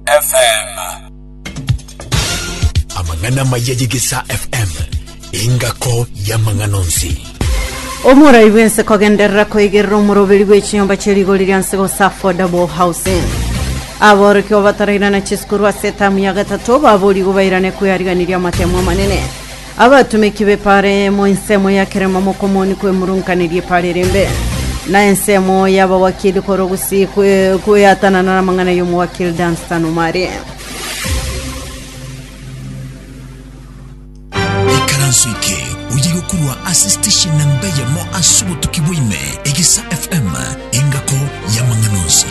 FM. Amang'ana amaya y'Egesaa FM, engako y'amang'ana onsi. Omorai bw'ense kogenderera koigerera omoroberi bw'echinyomba chia rigori ria nse gose affordable housing aboroki babatarairana chisukuru ase etamu ya gatato baborigo bairane kweariganiria amatemo amanene Abatomeki b'epaare emo ensemo ya kera mamokomoni kwemurunkaneria epaare ere embe, na ensemo y'abawakili korwa gusii kwe- kweatanana n'amang'ana y'omowakili Dunstan Omari. ikaranso eke oyige korwa ase station na mbe yamo ase obotuki bwaime egesa fm engako y'amang'ana onsi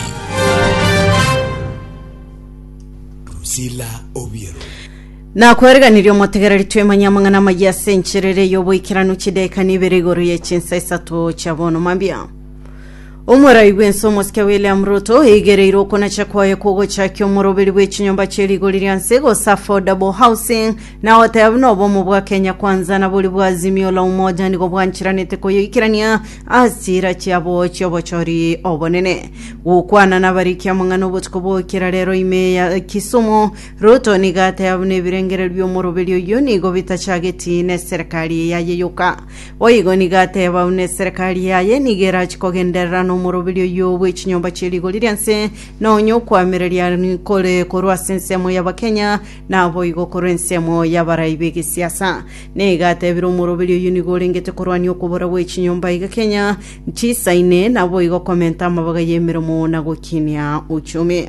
Priscilla Obiero. Nakwereganirie omotegereri twemanye amang'ana amayia ase enchera ere y'oboikeranu chidaeka nibere igoro ye chinsa isato chia bono mambia. Omorai bw'ense omosike William Ruto eigereire okonacha kwaye kw'ogochakia omoroberi bw'echinyomba chie rigori ria nse gose affordable housing na goteba buna obomo bwa Kenya Kwanza na boria bwa Azimio la Umoja nigo bwanchiranete koyoikerania ase chiira chiabo chi'obochori obonene. Gokwana nabarikia amang'ana obotuko bw'okera rero ime ya Kisumu Ruto nigo ateeba buna ebirengerio bi'omoroberi oyio nigo bitachageti neserekari eyaye yoka. Boigo nigo ateeba buna eserekari yaye nigo erachi kogenderera nomoroberi oyio bwe chinyomba chie rigori ri'ense, na onye okwamereria nkore korwa ase ensemo y'Abakenya, naboigo korwa ensemo y'abarai b'egesiasa. Nigo ateebire omoroberi oyio nigo orengete korwania okobora gwe chinyomba iga Kenya chisaine, naboigo komenta amabaga y'emeremo na gokinia uchumi.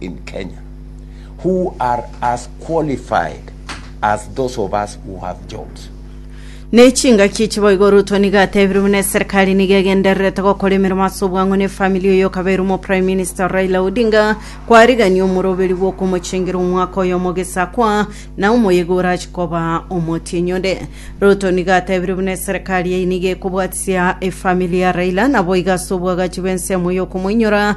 in Kenya who are as qualified as those of us who have jobs. Nechingaki chiboigo Ruto nigo atebire buna eserikari nigo egendererete gokora emeremo ase obwango ne famili oyo okabeirwe Prime Minister Raila Odinga kwarigania omoroberi bwokomochengera omwaka oyo omogesakwa na omoyega orachi koba omotienyi onde. Ruto nigo atebire buna eserikari eye nigo ekobwatisia efamili ya Raila naboigo ase obwagachi bw'ensemo yokomoinyora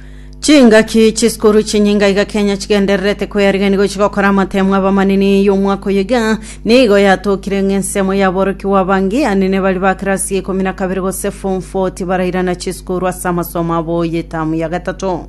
Chingaki chisukuru chinyinga iga Kenya chigendererete kweyarigia nigo chigokora amatemo abamanini y'omwaka oyo iga nigo yatokire ng'a ensemo y'aborokigwa abange anene bari ba kirasi ya ikomi na kabere gose form 4 tibarairana chisukuru ase amasomo abo y'etamu ya gatato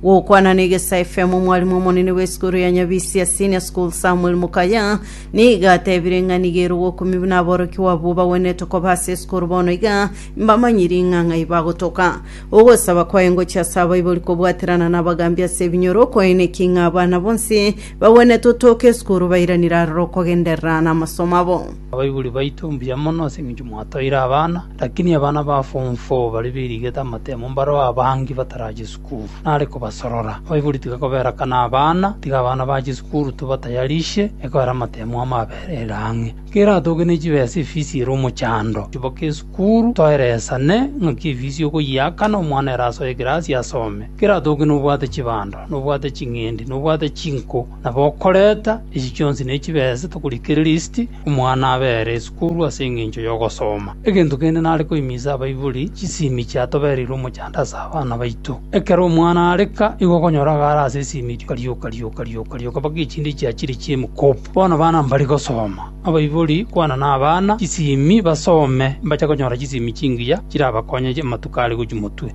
gokwana na egesa fm omwarimu omonene bw'esukuru ya nyabisia senior school samuel mukaya nigo atebire ng'a nigo ere ogokumibwa na aborokigwa abwo bagwenerete koba ase esukuru bono iga mbamanyiri ng'a ng'ai bagotoka Ogosaba kwaye ngochie ase abaibori kobwaterana nabagaambi ase ebinyoro, kwaeneki ng'a abana bonsi bagwenerete otooka esukuru bairanire aroro okogenderera namasomo abo. Abaibori baito mbuya mono ase eng'encho mwatoire abana, lakini abana ba form four baria bairigete amatemo mbareo abange batarache sukuru. Nare kobasorora. Abaibori tiga koberakana abana, tiga abana bache sukuru tobatayarishe, ekobera amatemo amo aberere ang'e. Keratoke ne chibesa efisi ere omochando, chiboke esukuru, toeresane ng'aki efisi okoyiaka na omwana ere asoe ekerasi asome. Keratoke nobwate chibando, nobwate ching'endi, nobwate chinko, na bokoreta, echi chionsi ne chibesa tokorikereria isiti, omwana abe ere esukuru ase engencho y'ogosoma. Egento kende nare koimisa abaibori, chisimi chiatobereirwe omochando ase abana baito. Ekero omwana areka, igo okonyora agare ase esimi rioka rioka rioka rioka rioka mpaka echinde chiachire chi'emokopo. Bono bana mbari gosoma, abaibori kwana nabana chisimi basome, mbache konyora chisimi chingiya chirabakonye amatuko are gochia motwe.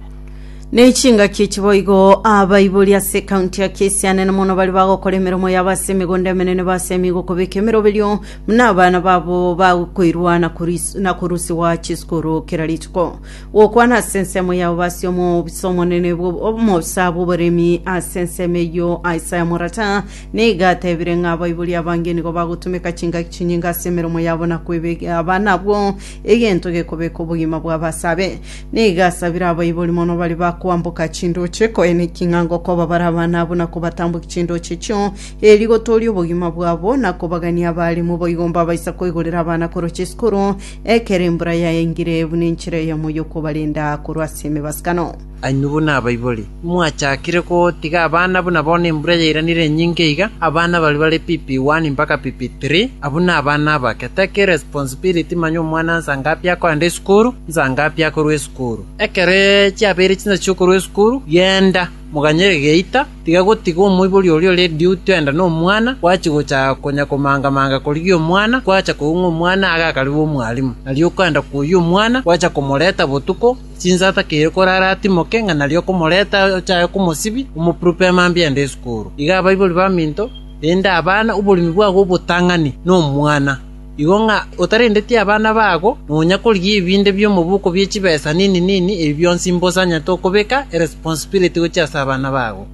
Ne chingaki echi boigo abaibori ase ekaunti ya Kisii anene mono baria bagokora emeremo yabo ase emegondo emenene basemigwe okobeka emeroberio buna abana babo bakoirwa na koris- na korusigwa chisukuru kera rituko. Gokwana ase ensemo yabo basie omobisa omonene bwo- omobisa bw'oboremi ase ensemo eyio Isaya Morata Nigo atebire ng'a abaibori abange nigo bagotumeka chingaki chinyinge ase emeromo yabo na kwebegera abana abwo, egento gekobeka obogima bw'abasabe. Nigo asabire abaibori mono baria bakoamboka chindoche, koeneki ng'a ngokoba bare abana abwo na kobatambokia chindoche echio, erio gotoorie obogima bwabo, na kobagania abaalimu boigo mbabaisa koigorera abana koroche esukuru, ekero embura yaengire, buna enchera eyemo y'okobarenda korwa ase emebasukano. Ain. Buna abaibori, timwachakire gotiga abana buna bono embura yairanire enyinge iga, abana baria bare PP 1 mpaka PP 3, abwo nabana abake, take irresponsibility manya omwana nsa ngapi akoenda esukuru, nsa ngapi akorwa esukuru. Ekero chiabeire chinsa chiokorwa esukuru, genda, moganye egeita, tiga gotiga omoibori oria ore duty oenda nomwana, gwachi gocha konya komanga manga korigia omwana, gwacha koigwa ng'a omwana agakariba omwalimu, nario okoenda koyia omwana, gwacha komoreta botuko, Chinsata keire korare atimoke ng'a nario okomoreta ochae komosibia, omopurupe amambia aende isukuru. Iga abaibori baminto, rende abana oborimi bwabo obotang'ani nomwana. Igo ng'a otarendeti abana babo, nonya korigia ebinde bi'omoboko bie chibesa nini nini, ebi bionsi mbosanyete okobeka eresponsibility gochia ase abana babo.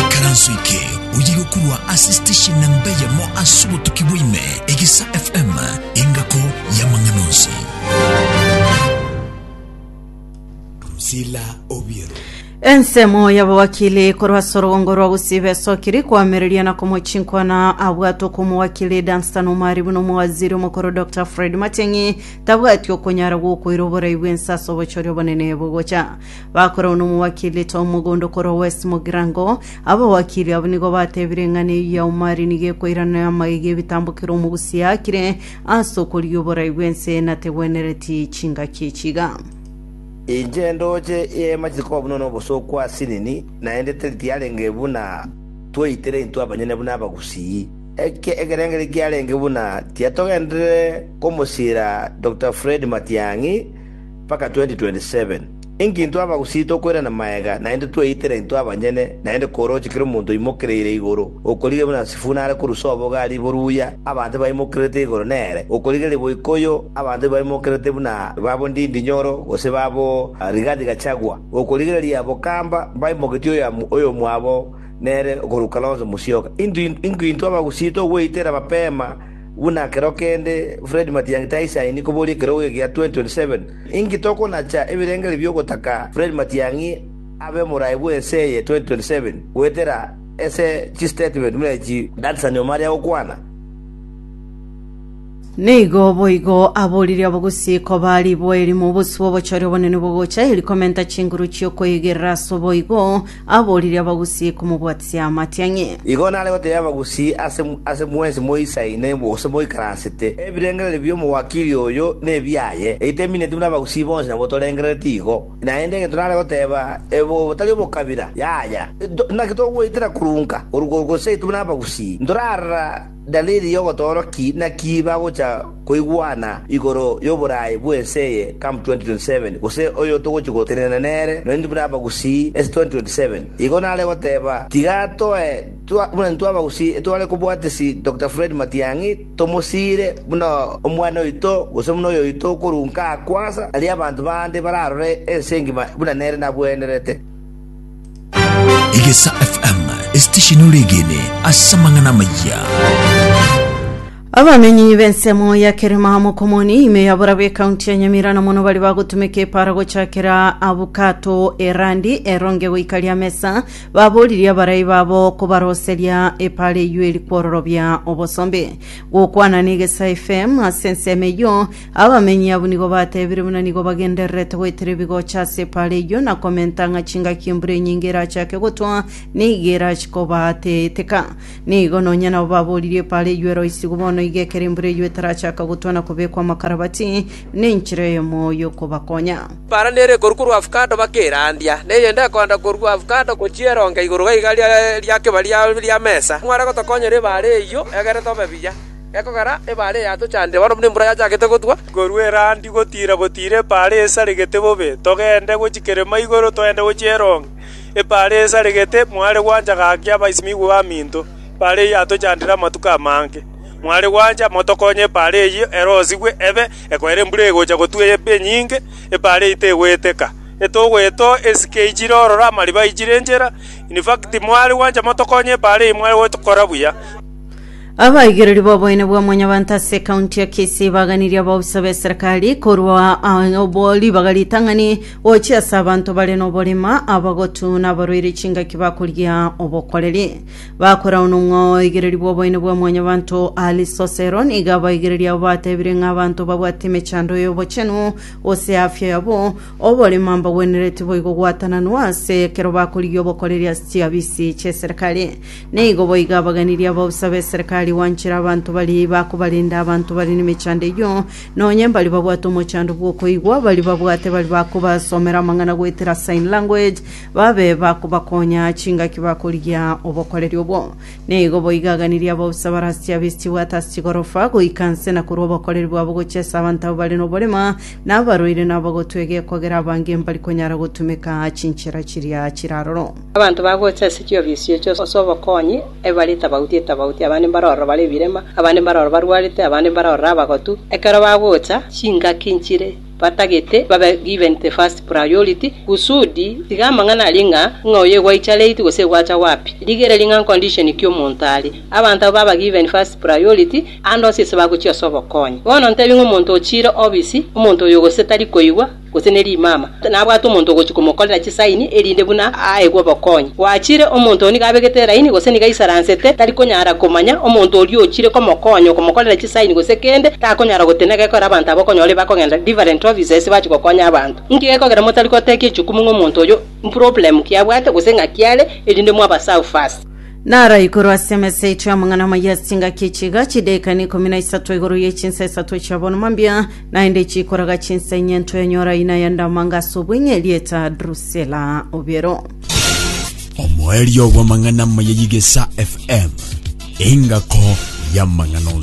Ikaranso eke oyige korwa ase station na mbe yamo ase obotuki bwaime, Egisa FM, engako y'amang'ana onsi. Drusilla Obiero. Ensemo y'abawakili korwa ase orogongo rwa gosiiba esokiri koamereria na komwa chinkwana abwate okwa omowakili Dunstan Omari buna omowaziri omokoro Dr Fred Matiang'i tabwati okonyara gwokoira oborai bw'ense ase obochori obonene bogocha Bakoragwa nomowakili etao omogondo korwa West Mogirango. Abawakili abwo nigo batebire eng'ana eyio ya Omari nigo ekoirana namagegi ebitambo kera omogusia akire ase okorigia oborai bw'ense nategwenereti chingaki echiga. Inche ndoche eema chikoba buna nobosooku ase nini, naende teri tiarenge buna twaitire intwe abanyene buna abagusii. Eke ekerengeri kiarenge buna tiatogenderere komosiira Dokita Fred Matiang'i, mpaka 2027. Inki intwe abagusii tokoirana magega naende tweitera intwe abanyene, naende koroche kera omonto oimokereire igoro, okorigia buna Sifuna are korusia oboga a ribo ruya abanto baimokerete igoro nere, okorigia riboikoyo abanto baimokerete buna babo Ndindi Nyoro gose babo Rigathi Gachagua, okorigereria bokamba baimoketie oyomo oyomwabo nere okorwa Kalonzo Musyoka. Inki intwe abagusii togweitera mapema? Buna ekero kende Fred Matiang'i taisaini koboria ekerogo egia 2027, inki tokonacha ebirengererio bi'ogotaka Fred Matiang'i abe omoraai bw'ense eye 2027 goetera ase chistatement buna echi Dansan Omari agokwana? Nigo boigo aboririe abagusiko ba riboeri mobosio bw'obochori obonene bogocha, eri komenta chinguru chi'okoigerera ase oboigo, Aborire abagusii komobwatisia amatiang'i. Igo nare goteebia abagusii ase, ase mwensi moisaine gose moikaransete, Ebirengererio bi'omowakiri oyo nebiaye, eiteminetwe nabagusii bonsi nabo torengerereti igo. Naende egento nare goteeba, Ebe otari omokabira, yaya, naki togoetera korwa nka, korwa korwa gose aitwe buna abagusii, ntorara. Dalili y'ogotooro ki naki bagocha koigwana igoro y'oboraai bw'ense eye come 2027, gose oyo togochia gotenena nere nonya buna abagusii ase 2027? Igo nare goteba, tiga toe twa buna intwe abagusii etware kobwatisi Doctor Fred Matiang'i tomosiire buna omwana oito gose buna oyoito okorwa nka akwasa, aria abanto bande bararore ense engima buna nere nabwenerete. Egesa FM, esitesheni ore egene ase amang'ana amaya. abamenyi b'ensemo ya kerema mokomoni ime ya borabu ekaunti ya nyamira na mono bari bagotumeka epara gochakera abukato erandi eronge goika ria mesa baboririe abarai babo kobaroseria epara eywo eri kwororobia obosombe gokwana na egesa fm ase ensemo eywo Abamenyi abwo nigo batebire buna nigo bagendererete goetera ebigocha ase epaara eyio na komenta ng'a chingaki embura enyinge erachake gotwa nigo erachi kobaateeteka. Nigo nonya nabo baboririe epaara eyio eroisigwe bono iga ekero embura eyio etarachaka gotwa na kobekwa amakarabati nenchera eyemo y'okobakonya. Epaara nere ekorwa korwa avocado baka erandia, na eyende ekoenda korwa avocado gochia eronga igoro gaiga ria kebari ria mesa. Mware gotokonyera ebaara eyio egere tobe buya. Gekogera ebaare yatochandire bono buna embura yachakete gotwa. Korwa erandi gotiira gotiira ebaare esaregete bobe, togende gochia kerema igoro, togende gochia eronge. Ebaare esaregete, mware gwancha gaki abasimigwa baminto, ebaare eyio yatochandire amatuko amange. Mware gwancha motokonye ebaare eyio erosigwe ebe ekoera embura egocha gotwa ebe enyinge, ebaare eyio tegweteka. Etogoeto, esike eichire ororo, amariba aichire enchera, in fact, mware gwancha motokonye ebaare eyio mware gokora buya. Abaigereri b'oboene bwa mwanyabanto ase ekaunti ya Kisii baganirie abaofisa b'eserekari korwa ah, obo ribaga ritang'ani gochia ase abanto bare noborema, abagotu na abarwaire chingaki bakorigia obokoreri. Bakorao nomwoigereri bw'oboene bwa mwanyabanto Alice Osero nigo abaigereri abo batebire ng'a abanto babwate emechando y'obochenu gose afya yabo oborema mbagwenereti boigo gwatananwa ase ekero bakorigia obokoreri ase chiabisi chi'eserekari. Nigo boigo abaganirie abausa b'eserekari gwanchera abanto baria bakobarenda abanto bare nemechando eyio, nonya mbaria babwate omochando bw'okoigwa, baria babwate baria bakobasomera amang'ana goetera sign language, babe bakobakonya chingaki bakorigia obokoreri obwo. Nigo boigo aganirie abausa bare ase chiabisi chibwate ase chigorofa, goika nse na korua obokoreri bwabo gochia ase abanto aba bare noborema, na abarwaire na abagotwa egekogera abange mbari konyara gotumeka chinchera chiria chiraroro. Abanto bagocha ase chioobi esiochio ase obokonyi, aye bare etabauti etabauti, abande mbare ororo bare ebirema, abande mbare ororo barwarete, abande mbare ororo abagotu. Ekero bagocha, chingaki nchire batagete babe given the first priority, kusudi tiga amang'ana aria ng'a ng'a oyo egwaicha late gose egwacha wapi. Rigereria ng'a condition ki omonto are. Abanto abwo baba given first priority, ande onsi ase bagochia ase obokonyi. Bono ntebie ng'a omonto ochiire obisi, omonto oyo gose tari koigwa, gose ne rimama, nabwate omonto ogochia komokorera chisaini, erinde buna aegwe obokonyi. Gwachire, omonto oo nigo abegete eraini, gose nigo aisaransete, tari konyara komanya, omonto oria ochire komokonya okomokorera chisaini gose kende, takonyara gotenena gekore abanto aba okonyora ebe bakogenda different offices bachia gokonya abanto. Inki gekogera motari gotekia echukumu ng'a omonto oyo mproblem ki abwate gose ng'aki are, erinde mwabaserve first. Naro igoro ase emesa yaito y'amang'ana amayia ase chingaki echi iga, chidaeka ne ikomi na isato igoro ye chinsa isato chiabonwa mambia, Naende chikoraga chinsa inye ntoenyora ina ya ndamanga ase obweng'e erieta Drusela obiero. Omoerio bw'amang'ana amaya y'Igesa FM, engako y'amang'ana onsi.